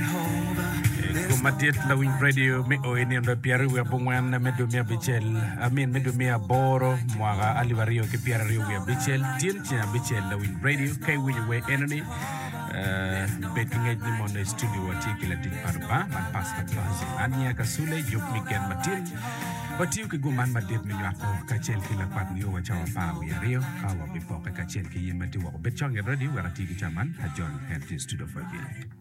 Ceng madit lawiny radio me oi nindo pyera wiye abongwen me dwe miya abicel amin me dwe miya aboro mwaka alip aryo ki pyera aryo wiye abicel tyen ceng abicel lawiny radio ka iwinyo wer enoni eh, bed ki ngec ni mondo i studio watye ki latic pa Lubanga man pasta Basil an niya ka sule jok mi gen matin watiyo ki gum man madit me nywako kacel ki lakwat nio wa cawa apar wiye aryo ka wabipoke kacel ki in ma tye woko bed cong it radio wek ati ki ca man ajon en tye i studio for iye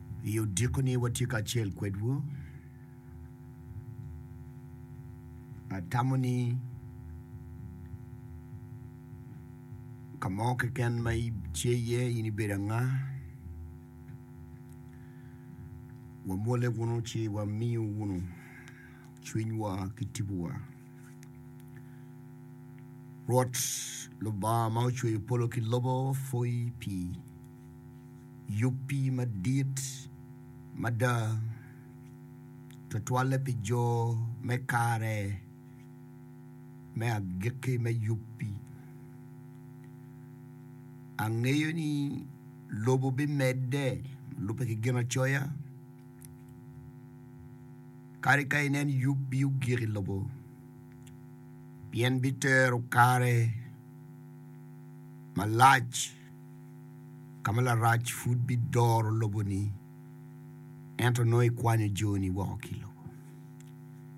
I odiko-ni watye kacel kwedwu. Atamo ni ka mo keken ma itye iye in ibedo anga, wamwolle wunu ci wamiyo wunu cwinywa ki tipowa. Rwot Lubanga ma ocweyo polo ki lobo pwoyi pi Yubbi madit mada, tutwalle pi jo me kare me agikki me yubbi. Angeyo ni lobo bimedde lubbe ki Ginacoya kadi ka inen yubbi ogik i lobo, pien bitero kare malac. ka ma larac pud bidoro loboni, ento nongo ikwanyo joni woko ki i lobo.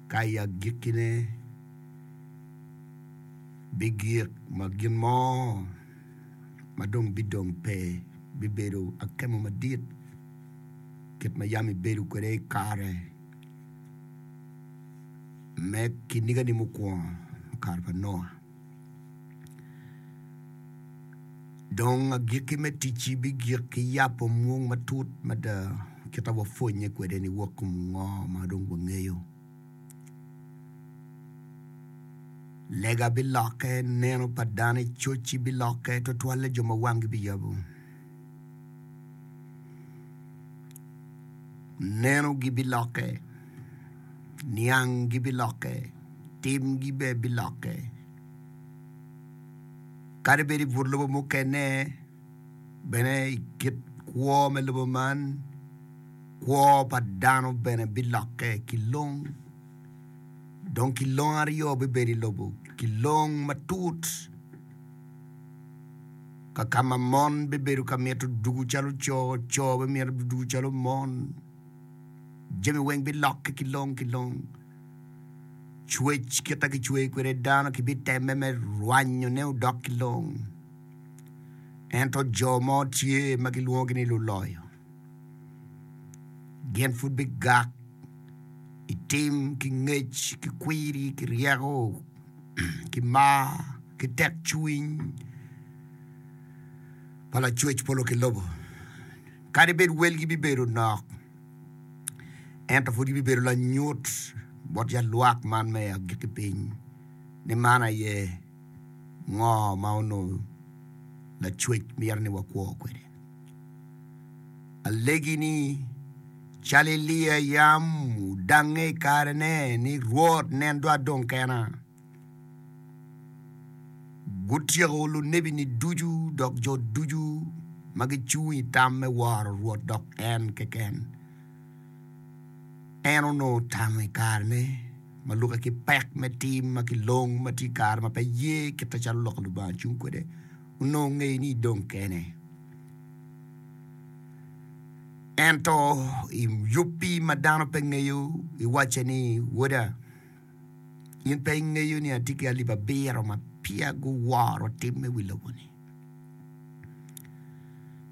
Ka i agikkine bigik ma gin mo ma dong bidong pe bibedo akemo madit, kit ma yam ibedo kwede i kare me kinigani mukwongo, kare pa Noa. Dong agikki me ticci bigik ki yabo mwong matut mada kit ma wapwonnye kwede ni wok i ngo ma dong wangeyo. Lega bilokke, neno pa dano i cocci bilokke, tutwalle jo ma wanggi biyabo. Nenogi bilokke, nianggi bilokke. Timgi bene bilokke. Kadi bed i but lobo mukene, bene i kit kwo me lobo man, kwo pa dano bene bilokke ki long. Dong kilong aryo bibedo i lobo, kilong matut kakama mon bibedo ka mito ducu calo co, co bimito ducu calo mon. Jami weng bilokke ki long ki long. Cwec kit ma kicweyo kwede dano kibitemme me rwanyone odok ki long. Ento jo mo tye ma gilwongogi ni luloyo. Gin pud bigak i tim ki ngec ki kwiri ki ryeko ki mar ki tekcwiny pa Lacwec polo ki lobo. Kadi bed welgi bibedo nok, ento pud ibibedo lanyut bot yat lwak man me agikki piny, ni man aye ngo ma onongo Lacwec mito ni wakwo kwede. Alegi ni, calo Elia yam odangnge i kare ne ni, Rwot, nen dwa adong kena. Gutyeko lunebi-ni ducu dok jo ducu ma gicung i tam me woro Rwot dok en keken. En onongo tamo i kare-ne ma lukke ki pek me tim ma kilong ma tye i kare ma pe ye kite calo lok Lubanga cung kwede. Onongo ngeyo ni idong kene. Ento i yubbi ma dano pe ngeyo, iwacce ni, Woda, In pe ingeyo ni atye ki alip abiro ma peya guworo tim me wi lobo-ni?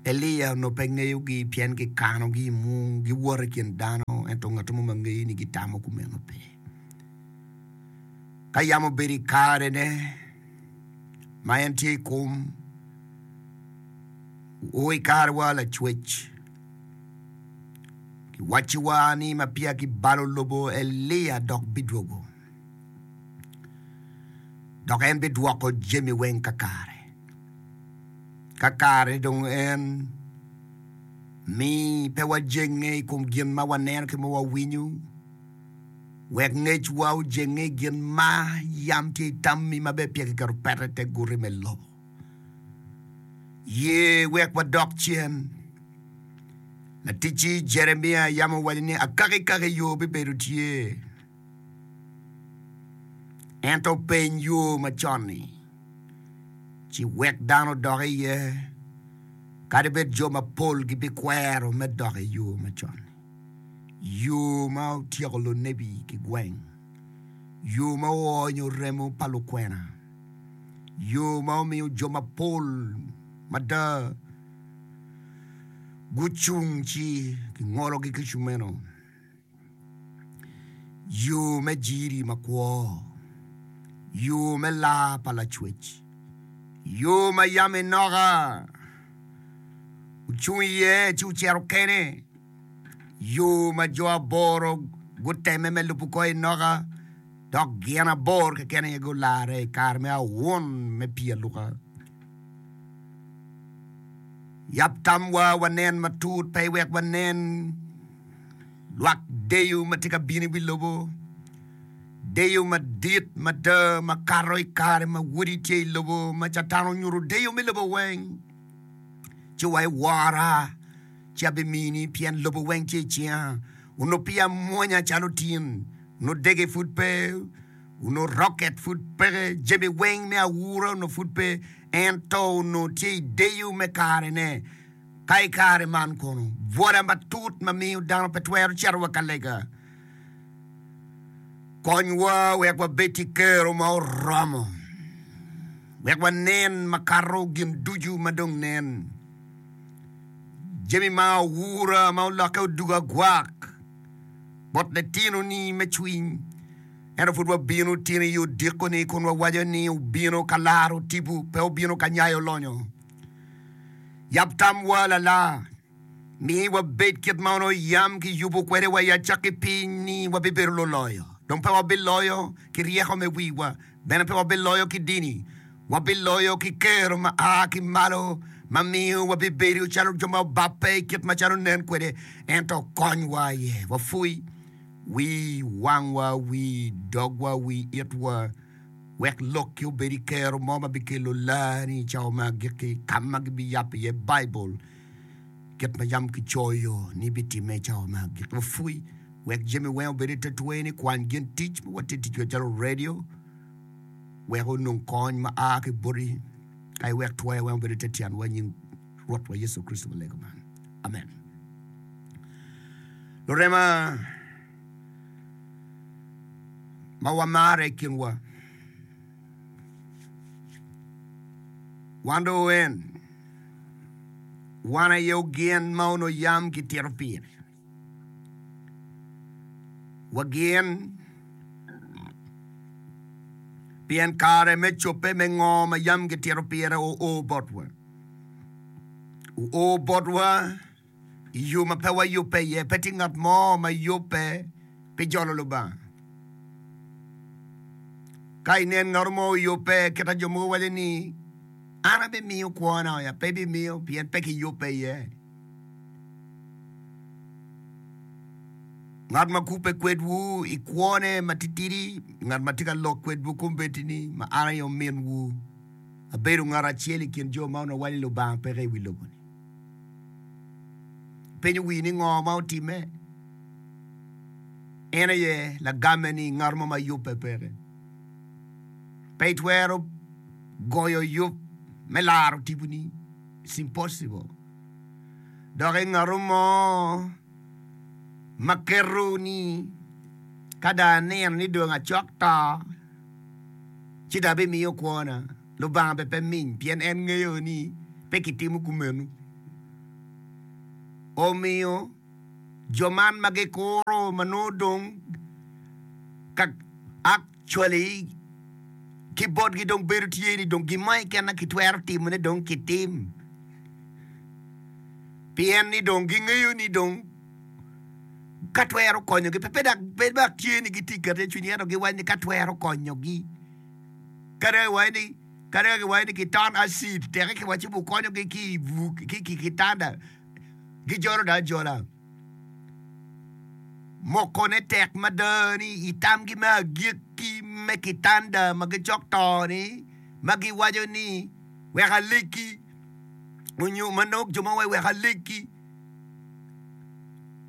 Elia onongo pe ngeyogi pien gikanogi i mung, giwoto i kin dano, ento ngat mo ma ngeyo ni gitamo kumeno pe. Ka yam obedo i karene ma en tye i kom, o i karewa Lacwec, Kiwacciwa ni ma peya kibalo lobo Elia dok bidwogo, dok en bidwoko jami weng kakare. Kakare dong en mi pe wajenge i kom gin ma waneno ki ma wawinyo, wek ngecwa ojenge i gin ma yam tye i tammi ma bene peya kiketo peta i te guti me lobo. Ye wek wadok cen. Laticci Jeremia yam owaco ni akaki kaki yo bibedo tye. Ento openy yo macon-ni, ci wek dano odok iye, kadi bed jo mapol gibikwero me dok i yo macon, yo ma otyeko lunebi ki gweng, yo ma oonyo remo pa lukwena. yo ma omiyo jo mapol mada gucung ci kingologi ki cumeno, yo me jiri makwo, yo me laa pa Lacwec, yo ma yam Enoka ocung iye ci ocito kene, yo ma jo aboro guteme me lubo kor Enoka. dok gin abor keken aye gularre i kare me awun me pii aluka. Yab tamwa wanen matut pe wek wanen lwak deyo ma tye ka bino i wi lobo, deyo madit mada ma kato i kare ma Wodi tye i lobo, ma Catan onyuto deyo me lobo weng. Ci wa iwora, ci abimini, pien lobo weng tye i cinga. onongo pii amwonya calo tin, onongo dege pud pe, onongo roket pud peke, jami weng me aura onongo pud pe, ento onongo tye i deyo me karene. Ka i kare man kono, bwola matut ma miyo dano pe twero cito wa ka lega, konywa wek wabed ki kero ma oromo, wek wanen makato gin ducu ma dong nen. Jami ma oura ma olokke odoko agwak bot litinoni me cwiny. Ento pud wabino tini i odiko-ni kun wawaco ni obino ka laro tipo, pe obino ka nyayo lonyo. Yab tamwa lala, mi wabed kit ma onongo yam kiyubo kwede wa i acakki piny ni wabibedo luloyo, dong pe wabiloyo ki ryeko me wiwa, Bene pe wabiloyo ki dini, wabiloyo ki kero ma a ki malo ma miyo wabibedo calo jo ma obabbe i kit macalo onen kwede. Ento konywa aye wapwoy wi wangwa, wi dogwa, wi itwa, wek lokki obed i kero mo ma bikelo laa-ni i cawa me agikki, ka ma gibiyabo iye Baibul. Kit ma yam kicoyo ni bitimme i cawa ma agikki, wapwony wek jami weng obed i te twer ni kwany gin tic ma watye ticgi macalo redio wek onong kony ma a ki boti ka iwek twer weng obed i te tyenwa i nying Rwotwa Yecu Kricito ma lego man. Amen. Lurema ma wamarre i kinwa Wan dong en, wan aye ogin ma onongo yam kitito pire. Wagin pien kare me cobbe me ngo ma yam kitito pire oo botwa. Oo botwa I yo ma pe wayubbe iye, pe tye ngat mo ma yubbe pi jolo Lubanga. Ka inen ngat mo oyubbe, kita jo mogo waco ni, An abimiyo kwona oya, pe ibimiyo pien pe kiyubbe iye. Ngat ma kubbe kwedwu i kwone matitidi, ngat ma tye ka lok kwedwu kombeddi ni, Ma an aye ominwu, abedo ngat acel i kin jo ma onongo waco ni Lubanga peke i wi lobo-ni. Ipenyo wii ni ngo ma otimme? En aye lagamme ni ngat mo ma yubbe peke. Pe itwero goyo yub me laro tiponi. It's impossible. Dok i ngatu mo ma keto ni ka dong anino ni dong acok to ci dong abimiyo kwona. Lubanga bene pe miny pien en ngeyo ni pe kitimo kumeno. Omiyo, jo man ma gikuro ma nongo dong ka actually ki botgi dong bedo tye ni dong gin mo keken ma kitwero timone dong kitim pien ni dong gingeyo ni dong ka twero konyogi pe dok pe dok tye ni gitye ka keto iye cwiny ento giwaco ni ka twero konyogi. kadi ka kiwaco ni kiton acid teke kiwaco ci wukonyogi ki i buk ki i kitanda gijolo dong ajola mokone tek mada ni i tamgi me agikki me kitanda ma gicok to-ni ma giwaco ni wek alegi onyo ma nongo jo ma wawaco wek alegi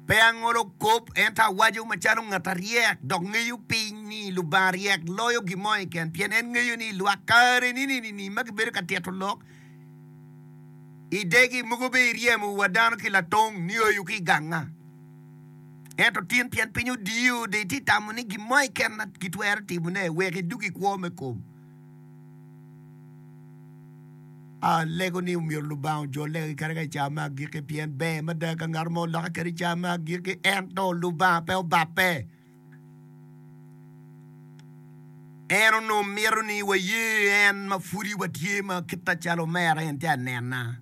Pe angolo kop, ento awaco macalo ngat aryek, dok ngeyo piny ni Lubanga ryek loyo gin mo keken, pien en ngeyo ni i lwak kare nini-ni ma kibedo ka tito lok i degi, mogo bene iryemo wa dano ki latong nioyo ki i ganga. Ento tin, pien piny odiyo, de itye ka tamo ni gin mo keken ma kitwero timone wek idug i kwo me kom. Alego ni omyero Lubanga ojol lega kiketo ka i cawa me agikki pien ber mada ka ngat mo olokke kede i cawa me agikki ento Lubanga pe obape. En onongo mito ni waye en ma pwodi watye ma kita calo omera en tye anena.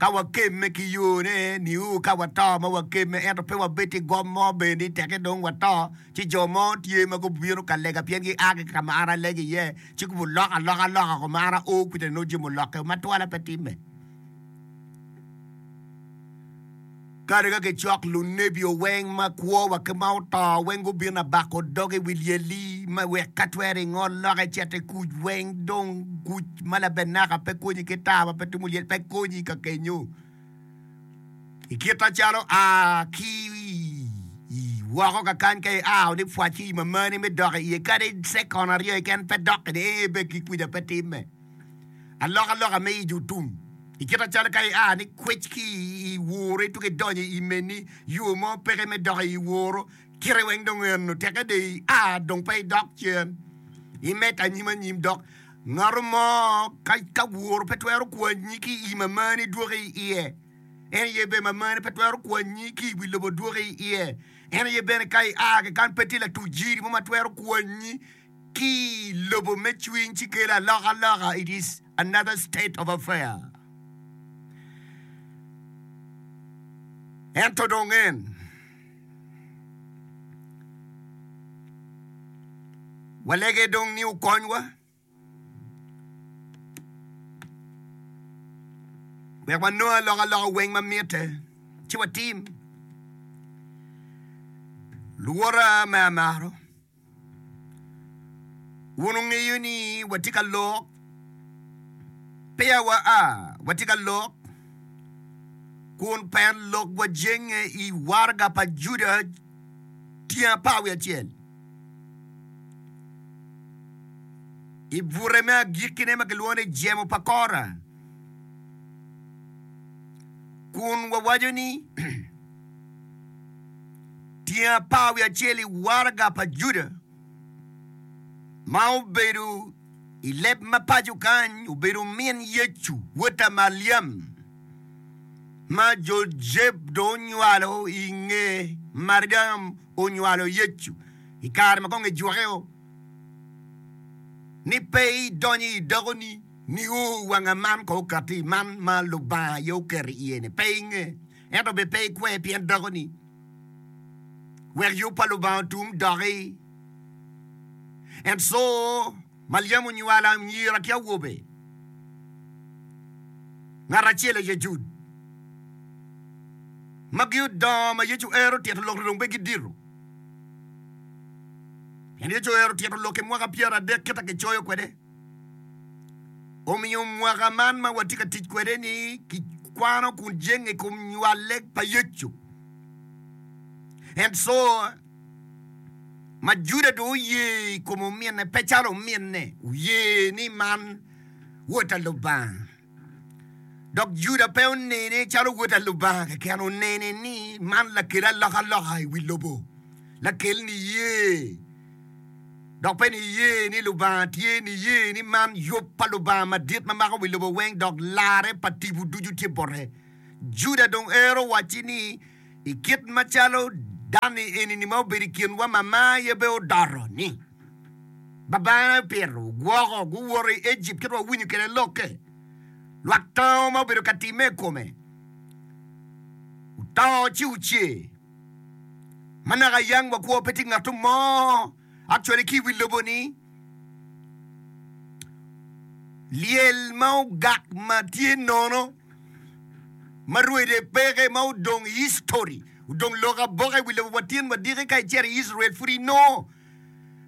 Ka wakemme ki yone, niu ka wato ma wakemme, ento pe wabed ki gom mo bene ni teke dong wato, ci jo mo tye ma gubino ka lega pien gia ki ka ma an alego iye, ci gubuloko aloka loka ko ma an ao kwede nongo jami olokke o ma twala pe timme. Kadi ka gicok lunebi o weng ma kwo wa ki ma oto weng gubino abako dog i wi lyeli me wek ka twere i ngol lok e cet e kuc weng dong kuc ma labenaka pe konyi ki taa ma pe tumo lyel pe konyi ka kenyo i kit a calo a ki i woko ka kany ka i ao ni pwac ki i mamani me dok i ye kadi second aryo keken pe dok i ni ee be ki kuc a pe time. Alokaloka me ijo tum, i kite calo ka ia ni kwec ki i woro ituko idonyo i meni, yo mo peke me dok i woro, kite weng dong eno, teke dong ia dong pe idok cen, imed anyim anyim dok. Ngato mo ka ka woro pe twero kwanyi ki i mamani dwoki i iye, en aye bene mamani pe twero kwanyi ki i wi lobo dwoki i iye, en aye bene ka ia ki kany pe tye latuc jiri mo ma twero kwanyi. ki lobo me cwiny ci kelo alokaloka, it is another state of affair. Ento dong en walege dong ni okonywa wek wanong alokaloka weng ma mitte ci watim. Luwota ma amaro, Wun wungeyo ni watye ka lok, peya wa a, watye ka lok, kun pien lokwa jenge i waraga pa Juda tyen apar wiye acel. I bute me agikkine ma kilwongo ni Jemo pa Kora, kun wawaco ni, Tyen apar wiye acel i waraga pa Juda ma obedo i leb ma paco kany obedo omin Yecu, wotta Maliam, ma Jojeb dong onywalo i nge Mariam onywalo Yecu i kare ma kong ejuke-o, ni pe idonyo i dakoni nio wanga man kong okati, man ma Lubanga aye oketo iye-ni, pe inge. ento bed pe ikwer pien dakoni. Wek yub pa Lubanga otum doki. And so, Maliam onywalo anyira ki awobe. Ngat acel aye Jud. Magi odongo ma Yecu ero tito lok-ri dong pe gidito. Pien Yecu ero tito lok-ki mwaka pyeradek kita kicoyo kwede. Omiyo mwaka man ma watye ka tic kwede ni kikwano kun jenge i kom nywale pa Yecu. Ento ma Juda dong oye i kom ominne pe calo ominne oye ni man Wod pa Lubanga. Dok Juda pe onene calo wod a Lubanga keken, onene ni man lakel alokaloka i wi lobo, lakel niye, dok pe niye ni Lubanga tye, niye ni man yub pa Lubanga madit ma mako wi lobo weng dok larre pa tipo ducu tye bote. Juda dong ero wacci ni, I kit macalo dani eni-ni ma obedo i kinwa ma mar aye bene odoto ni, Babana opito gwoko, guwoto i Ejipt kit ma wawinyo kwede lokke. Lwak tango ma obedo ka timme i kome oto ci oce. Ma naka yang wakwo pe tye ngat mo. Actually ki iwi lobo ni lyel ma ogak ma tye nono ma rwede peke ma odong history odong lok aboka iwi lobo wa tin wa diki ka icito i Israel pud inongo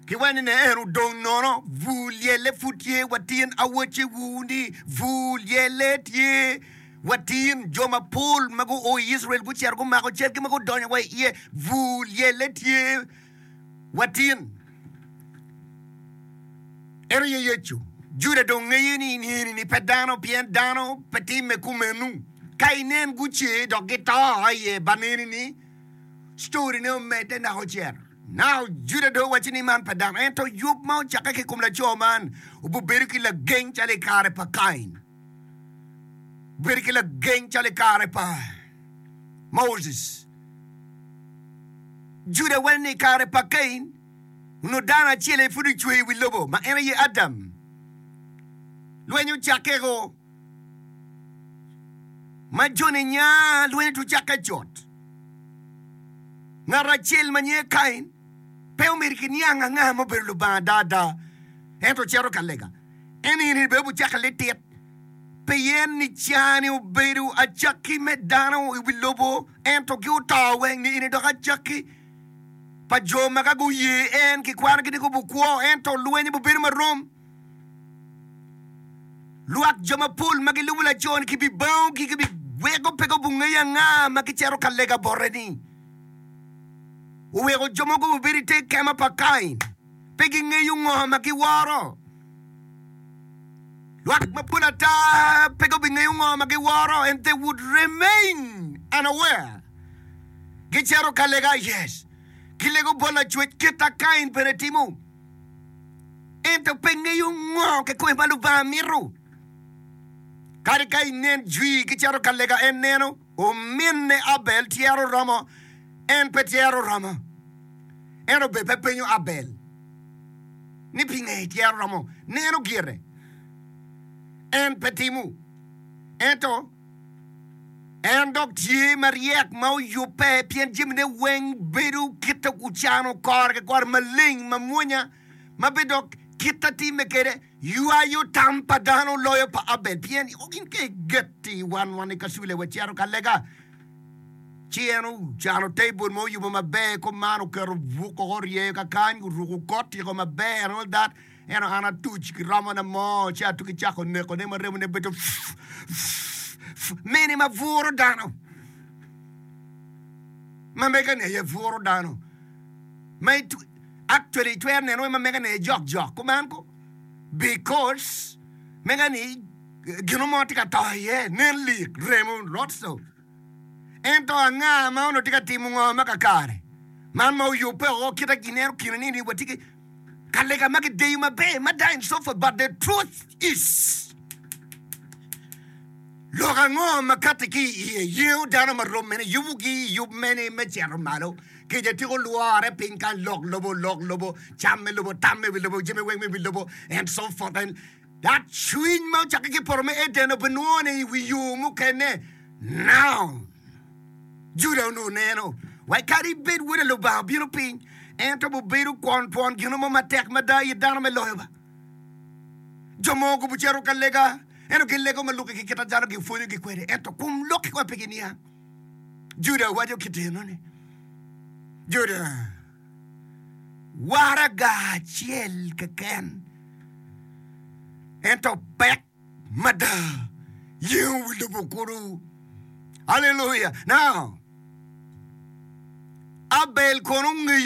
ki wene ne en odong nono bur lyelle pud tye wa tin awace wu ni bur lyelle tye wa tin jo mapol ma gu o i Israel gucito gumako cal ki ma gudonyo wa iye bur lyelle tye Watyen. En aye Yecu. Juda dong ngeye ni enini pe dano, pien dano pe timme kumenu. Ka inen gucer dok gito aye ba nenini, story ne omedde naka ocer. Now Juda dong owaco ni man pe dano, ento yub ma ocakke ki i kom laco man obibedo ki lageng calo i kare pa Kain. bedo ki lageng calo i kare pa Moses. Juda waco ni i kare pa Kain, onongo dano acel aye pud ocweyo i wi lobo, ma en aye Adam. Lweny ocakkeko ma joni nya lweny otwero cakke cut. Ngat acel ma nyinge Kain pe omido kiniang anga ma obedo Lubanga ada ada, ento cito ka lega. en in ibedo caka litit pien ni cani obedo acakki me dano i wi lobo, ento ki oto weng ni in idoko acakki pa jo ma ka guye en kikwanogi ni gubukwo, ento lwenye bubedo marom. Lwak jo mapol ma gilubo laco-ni kibibango gigi pi weko pe gubungeyo anga ma gicito ka lega bote-ni. Oweko jo mogo gubedo i te kema pa Kain. pe gingeyo ngo ma giworo. Lwak mapol ata pe gubingeyo ngo ma giworo and they would remain unaware. Gicero ka lega, yes, gilego bot lacwec kit a Kain bene timo, ento pe ngeyo ngo kikome ma Lubanga mito. Kadi ka inen jwi gicero ka lega en neno. Ominne Abel tyero romo? En pe tyero romo. En obed pe penyo Abel ni pinge tyero romo neno gire. En pe timo. Ento en dok tye maryek ma oyubbe pien jamine weng bedo kite ocano kore ki kore maleng mamwonya ma bidok kite timme kede. Ywayo tam pa dano loyo pa Abel, pien i oko gin ka i getti wan wan i kacule wa cito ka lega. Ci en ocano table mo oyubo maber ko man oketo buk koko oryeyo ka kany oruko kot tiko maber and all that eno an atuc ki romo na mo ci atuki cako neko ne ma remo ne bedo mini ma buro dano ma mega ni aye buro dano ma Actually itwero neno me ma mega ne jok jok kuman ko because mega ni gino mo tye ka to iye nen lik remo lots of ento anga ma ono tye ka timo ngo ma kakare man ma oyubbe o kita gineno kine ni ni watye ki kalega ma gideyo maber mada and so forth but the truth is lok ango ma kati ki iye yengo dano ma rommene yubugi yub mene me cito malo Kica tyeko lwore piny ka lok lobo, lok lobo, cam me lobo, tam me wi lobo, jami weng me wi lobo, and so forth. And that cwiny ma ocakke ki poto me Eden obinwongo ni i wi yo mukene. Now, Juda onongo neno wai kadi bed Wode Lubanga obino piny, en twero bedo kwon twon gino mo matek mada i dano me loyo ba. Jo mo ogubo cito ka lega, ento gin lega ma lukke ki kit ajalo gipwonyogi kwede, ento kum lukke kong pe giniang. Juda waco ki tino ni, Juda, waraga acel keken, ento pek mada yengowu lubo kudu. Haleluya! Now, Abel kono ngeyo